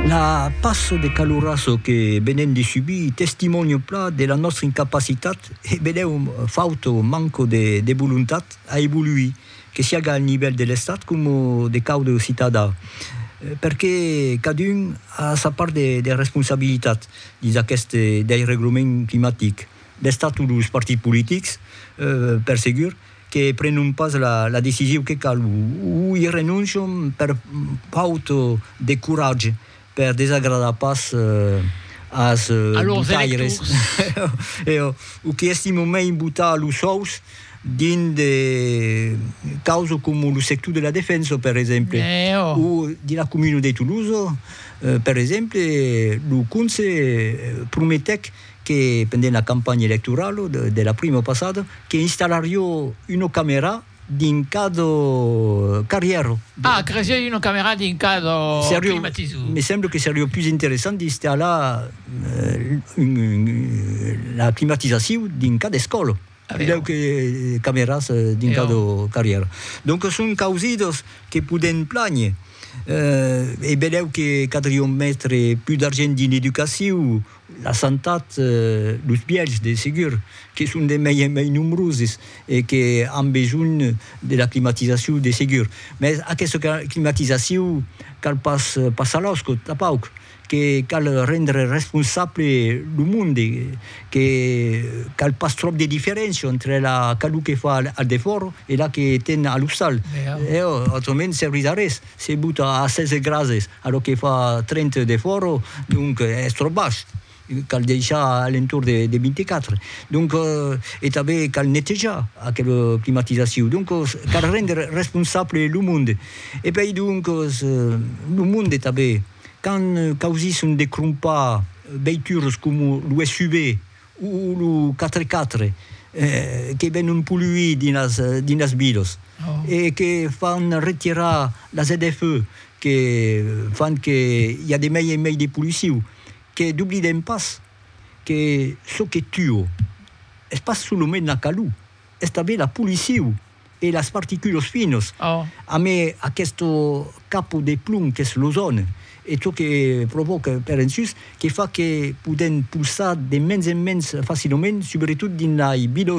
La passo de calurasso que venem de subir testimònio pla de la nòstra incapacitat e benèu fauto manco de volontat a evoluir, que siaga al nivèl de l'Estat coma de quaude citadà, perque cadun a sa part de responsabilitat dins aqueth deirreglament climatic, l'Estat o los partits politics per segur, que prenon pas la decisiu que cal, o i renoncion per faut de coratge, per desagradar pas as botaires, o que estimon mei botar los sòus dins de causas coma lo sector de la defensa, per exemple, o dins la comuna de Toulouse, per exemple, lo conse prometèc que pendent la campanha electoralo de la primo passado que installario uno camera dins cada carrièro. Ah, cresieu uno camera dins cada climatisor. Me semble que serio pus interessant d'installar la climatisasiu dins cada escòla pilhèu que cameras dins cada carrièro. Donc son causidos que podèm plànher. E belèu que cadrion metre pus d'argent dins l'educaciu. La santat, los bièlhs de segur que son de mai en mai nombroses e que an besonh de la climatizacion de segur. Mès aquesta climatizacion cal pas passar los còps tapauc, que cal rendre responsable lo monde, que cal pas tròp de diferéncia entre la calor que fa al defòra e la que ten a l'ostal. Autrament servís a res se bota a 16 grasses A lo que fa trente de fòro, donc es tròp baish, cal deishar a l'entorn de 24, donc e tanben cal netejar aquela climatizacion, donc cal rendre responsable lo monde e puèi donc lo monde tanben quand causisson de crompar veituras coma lo SUV, O lo quatre-quatre, que ven un poluir dins las vilas e que fan retirar las ZFE, que fan que i a de mei en mei de poluciu, que doblidem pas que çò que tua es pas solament la calor, es tanben la poluciu. e las particulos finos amé aquesto capo de plum qu'es l'ozòne e çò que provòca per ensús que fa que podèm pulsar de mens en mens facilament subretot dins lai